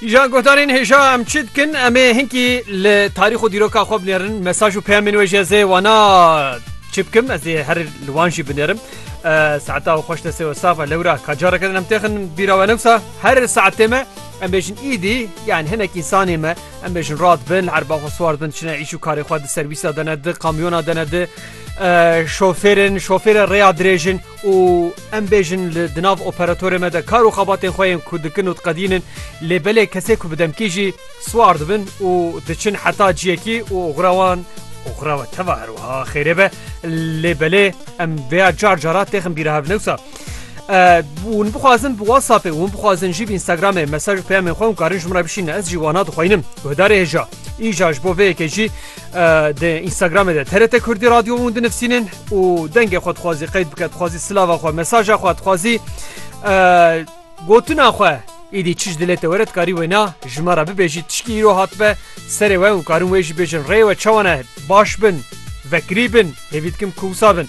Îjan gotanên hêja em çi dikin em ê hinkî li tarîx û dîroka xwe binêrin mesaj û peyamên wê jî ez ê wana çi bikim ez ê her li wan jî binêrim saeta û xweş destê we sava lewra ka careke din em têxin bîra we newsa her saetê me em bêjin îdî yan hinek însanê me em bêjin rat bin erba xwe swar bin çine îş û karê xwe di serwîsa dene di kamyona dene di şofêrin şofêre rêya dirêjin û Em bêjin li di nav operatorê me de kar û xebatên xwe yên ku dikin û diqedînin lê belê kesê ku bi demkî jî siwar dibin û diçin heta ciyekî û oxira wan oxira we teva her wiha xêrê be lê belê em vêya car cara têxin bîra hev newsa hûn bixwazin bi WhatsAppê hûn bixwazin jî bi Instagramê mesaj û peyamên xwe hûn karin ji min re bişînin ez jî wana dixwînim guhdarê hêja îja ji bo vê yekê jî di Instagramê de TRT Kurdî radyo hûn dinivîsînin û dengê xwe dixwazî qeyd bike dixwazî silava xwe mesaja xwe dixwazî gotina xwe îdî çi ji dilê te were dikarî wêna ji me re bibêjî tişkî îro hatbe serê we û karin wê jî bêjin rê we çawane baş bin vekirî bin hêvî dikim ku wisa bin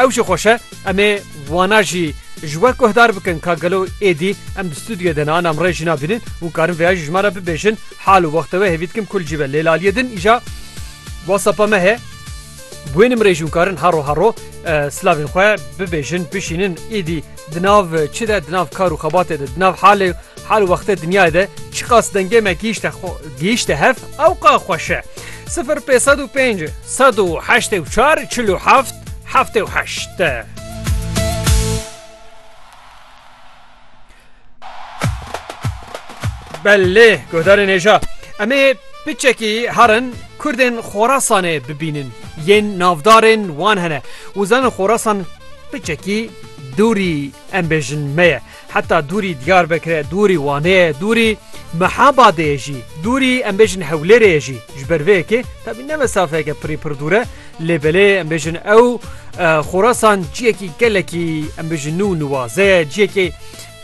ew jî xweşe em ê wana jî ji we guhdar bikin ka gelo êdî em di stûdyoyê de nan em rê jî nabînin û karin vêya jî ji me re bibêjin hal û wexte wê hêvî dikim kul cî be lêlaliyê din îja WhatsApp me he Guên im rê jûn karin haro haro silavên xwe bibêjin, bişînin, êdî di nav çi de, di nav kar û xebatê de, di nav halê hal û wextê dinyayê de çiqas dengê me gihîşte xwe gihîşte hev ewqa xweş e. Sifir pê sed û pênc sed û heştê û çar çil û heft heftê û heşt. Belê guhdarê nêja em ê piçekî herin Kurdên Xorasanê bibînin yên navdarên wan hene û zanin Xorasan piçekî dûrî em bêjin me ye heta dûrî Diyarbekirê dûrî Waneyê dûrî Mehabadê jî dûrî em bêjin Hewlêrê jî ji ber vê yekê tabî ne mesafeyeke pirî pir dûr e Lê belê em bêjin ew Xorasan ciyekî gelekî em bêjin nû niwaze ciyekê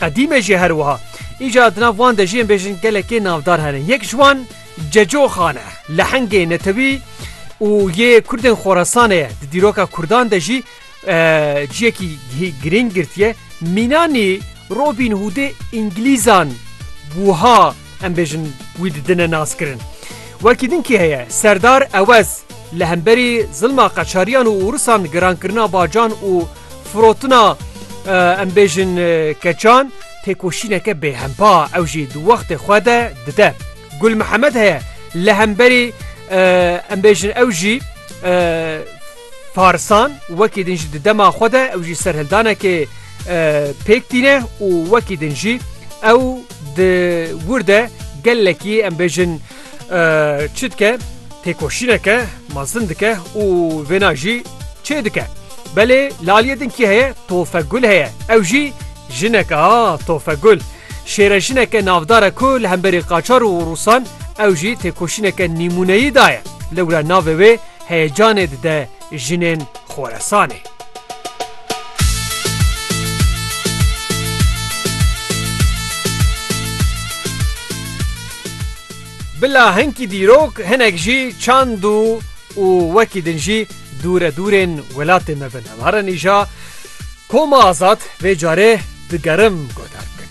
qedîme jî her wiha. Îca di nav wan de jî em bêjin gelekê navdar hene. Yek ji wan Cecoxan e. Lehengê netewî û yê Kurdên Xorasanê ye. Di dîroka Kurdan de jî ciyekî girîng girtiye mînanî Robîn Hûdê îngilîzan wiha em bêjin wî didine naskirin. Wekî din kî heye serdar ewez li hemberî zilma qeçariyan û ûrisan girankirina bacan û firotina em bêjin keçan têkoşîneke bêhempa ew jî di wextê xwe de dide. Gul Mihemed heye li hemberî em bêjin ew jî Farisan wekî din jî di dema xwe de ew jî serhildanekê pêk tîne û wekî din jî ew di wir de gelekî em bêjin çi dike têkoşîneke mezin dike û vêna jî çê dike. Belê li aliyê din kî heye Tofegul heye ew jî jineke ha Tofegul şêre jineke navdare ku li hemberî qaçar û rûsan ew jî têkoşîneke nîmûneyî daye lewra navê wê Heyecanê dide jinên Xoresanê. Bila hinkî dîrok hinek jî çand û û wekî din jî dûre dûrên welatê me bin. Em herin îja Koma Azad vê carê digerim guhdar bikin.